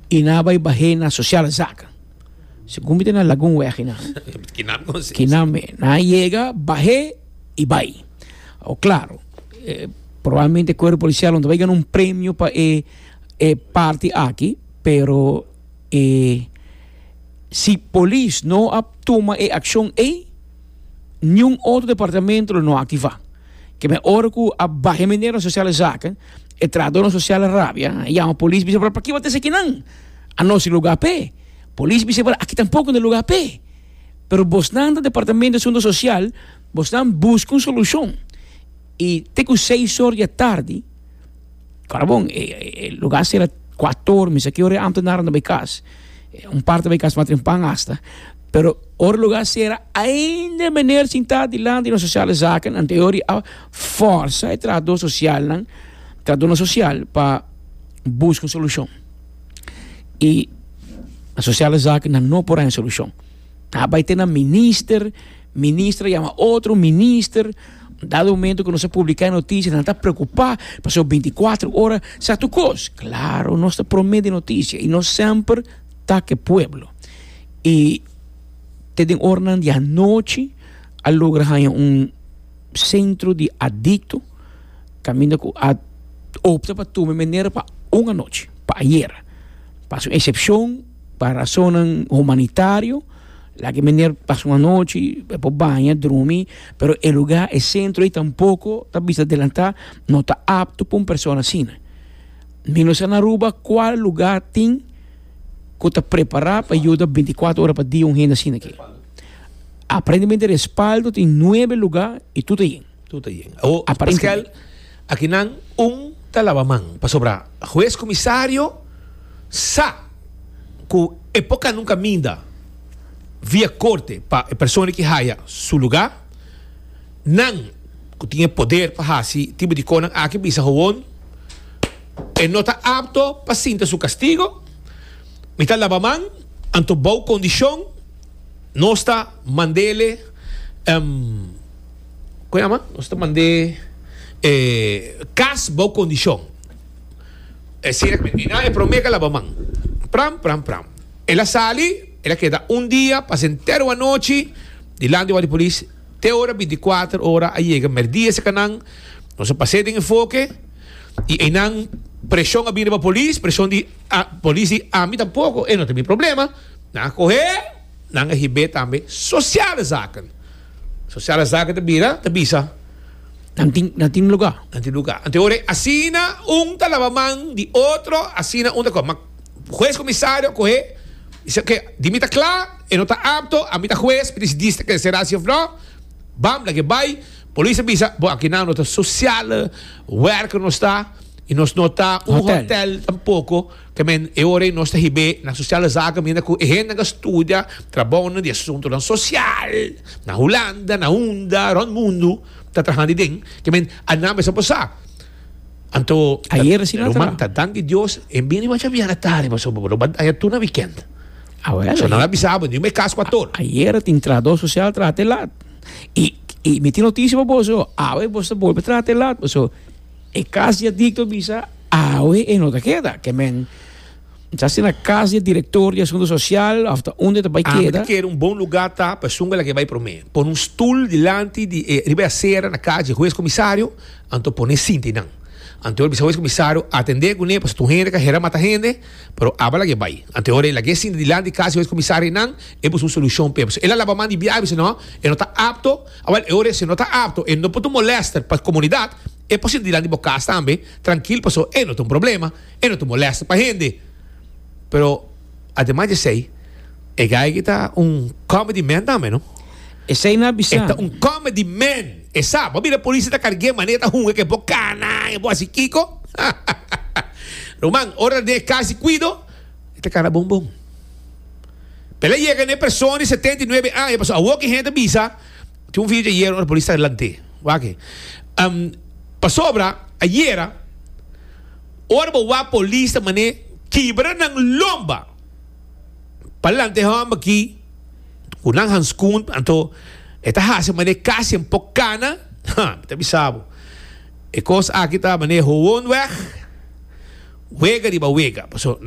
y na bay bahé na sociale zaken. Segun mi ta na Lagun weg y na. Kinan con si. Kinan me. Na yega, bahé y bay. Awo claro, eh, probablemente e cuerpo policial no ta bay gana un premio pa e, e parti aki, pero eh, si polis no a tuma e accion ey, niun otro departamento lo no a activa. Keme ora cu a bahé mi na sociale zaken. E trahador social a rabia, a yama polis bisa por paki bo ta hasi akinan? Anos tin lugar p'e? Polis bisa por aki tampoco no e lugar p'e. Pero bosnan ta departamento di asunto social, bosnan busca un solucion y te cu seis or di a tardi, ora bon e lugar cera cuato or misa ki ora e ambtenarenan ta bay cas, un parte ta bay cas maten pan hasta, pero ora e lugar cera ainda e meneer sinta dilanti di nos social de zaken anterior di a forsa e trahador socialnan, trahadornan social pa busca un solucion y na sociale zaken nan no por haña solucion. A bay te na minister, minister a yama otro minister, dado momento cu nos a publica e noticia nan ta preocupa pasobra binticuatro ora sa tur cos. Claro nos ta prome di noticia y nos semper tak e pueblo y te den oranan di anochi a logra haña un. Centro di Adicto caminda cu a opta pa tuma e manera pa un anochi, pa ayer. Pasa un excepcion pa razonnan humanitario, laga e manera pasa un anochi, e por baña, drumi, pero e lugar, e centro ei tampoco ta bisa adelanta, no ta apto pa un persona asina. Mi no sa na Aruba cual lugar tin cu ta prepara pa yuda binticuatro ora pa dia un hende asina aki. Aparentemente respaldo tin nuebe luga y tur ta yen. Tur ta yen. Awo, Paskel, akinan un ta laba man, pasobra hues comisario sa cu e por canon caminda via corte pa e persona ki haya su luga. Nan cu tin e poder pa haci tipo di conan aki bisa gewoon e no ta apto pa sinta su castigo. Mi ta laba man, anto bou condicion. Nos ta mandele con yama nos ta mande e cas bao condicion e si el a termina e prome el a laba man pram pram pram el a sali el a keda un dia pasa entero anochi dilanti wak di polis te ora binticuater ora a yega merdia ese canan nos a pase den e foke y eynan presion a bini riba polis presion di polis di ami tampoco e no ta mi problema. Nan a cohe, nan a hib'é tambe sociale zaken. Sociale zaken ta bira, ta bisa. Nan tin, nan tin lugar. Nan tin lugar. Anto ora e asina un ta laba man di otro, asina un ta cohe. Ma huez comisario a cohe, bis'é oke, di mi ta cla, e no ta apto, ami ta huez, mi ta dici dis ta cancelá si of no, bam, lag'é bai. Polis a bisa, bo aki nan no ta sociale werker nos ta, i nos no ta un hotel tampoco. Tambe e ora ei nos ta hib'é na sosial zaken mira ku e hende nan ka studia trabounan di asuntunan sosial na Hulanda, na unda, rònt mundu ta trahan di den kemen a nan mester por sa. Anto Ayer asina ta Ruman, ta dank di Dios e bin riba djaviera tardi paso bo lo bat aya tur na wikènt. Awèl So nan a bisa bo niun me kas ku ator. Ayer tin trahador sosial traha te lat i i mi tin notisia pa boso awe boso ta bolbe traha te lat paso E kas di adikto bisa awe e no ta keda. Ke men ta hasi na kas di e direktor di asuntu sosial òf ta unda e ta bai keda. Ami ta kere un bon lugá ta Pasunga laga e bai promé. Pone un stul dilanti di e riba e asera na kas di e hues komisario, anto pone e sinta einan. Anto e ora bisa hues komisario, Atendé kuné pasobra tur hende ka hera mata hende, pero aba laga e bai. Anto e ora e laga e sinta dilanti di kas di e hues komisario einan, e buska un solushon p'e. Pasobra el a laba man di biaha bisa no, e no ta apto. Awel, e ora esei no ta apto, e no por ta un molester pa comunidad, e por sinti dilanti bo cas tambe trankil paso e no ta un problema, e no ta un molester pa hende. Pero ademas di esei, e geigy ta un comedy man tambe, no? Esei na bisa. E ta un comedy man, e sa. Bo a mira Police ta cargue manera e ta hunga ke bo canan, e bo haci kico? Ruman, ora ta den e cas di cuido, e ta cana bon bon. Pela yega n'e person di setenta i nuebe aña, pasobra awor ki hende a bisa, tin un video ayer ora polis ta delant'é, wak, pasobra ayera ora bo wak polis ta man'é kibra nan lomba pa lanta e hòmber aki ku nan hanskun, anto e ta hasi man'é kasi bo por kana, ha, mi ta bisa bo e kos aki ta man'é howon wèg, wega riba wega, pasobra.